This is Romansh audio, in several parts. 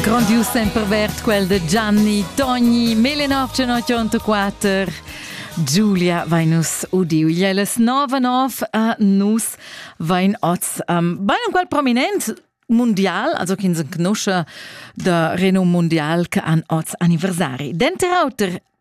Grondius sempervert quel de Gianni Togni 1984. Giulia vai nus udiu jeles nova nov a nus vain oz um, bei un qual prominent mundial, also chins en conosce da renum mundial che an oz anniversari. Denter auter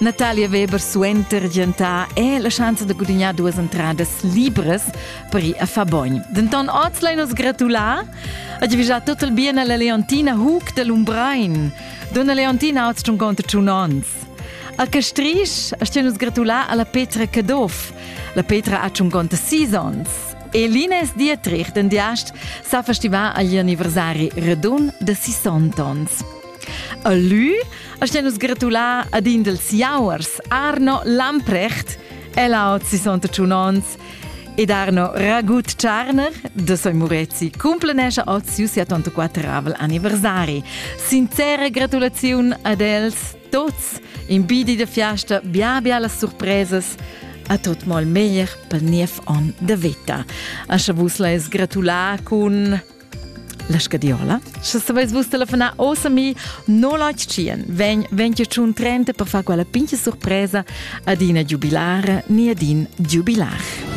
Natalia Weber suenter giantà è la schanza da gudignar duas entradas libras per ir a far bogn. Denton oz lai nos gratular a givigià tot il bien alla Leontina Hug de Lumbrein. Donna Leontina oz tschunconta tschun ons. A Castrisch a stian nus gratular alla Petra Cadoff. La Petra ha tschunconta sis ons. E Lines Dietrich, den Diast, sa festivar agli anniversari redun de 60 ons. A lü ascha nus gratulà ad in dels jauers Arno Lamprecht, el aut 61 ons, ed Arno Ragut Tscharner, da soi Murezi cumplenescha oz siu 74 anniversari. Sincera gratulaziun ad els tots, in bidi da fiasta bia bia las surpresas, a tot mal meglier pel niev on de vita. Ascha vus leis gratulà cun La scadiola? Sche saveis vus telefonar ossa mi 081 vegn 25 30 per far quella pincha surpresa ad ina giubilara ni ad in giubilar.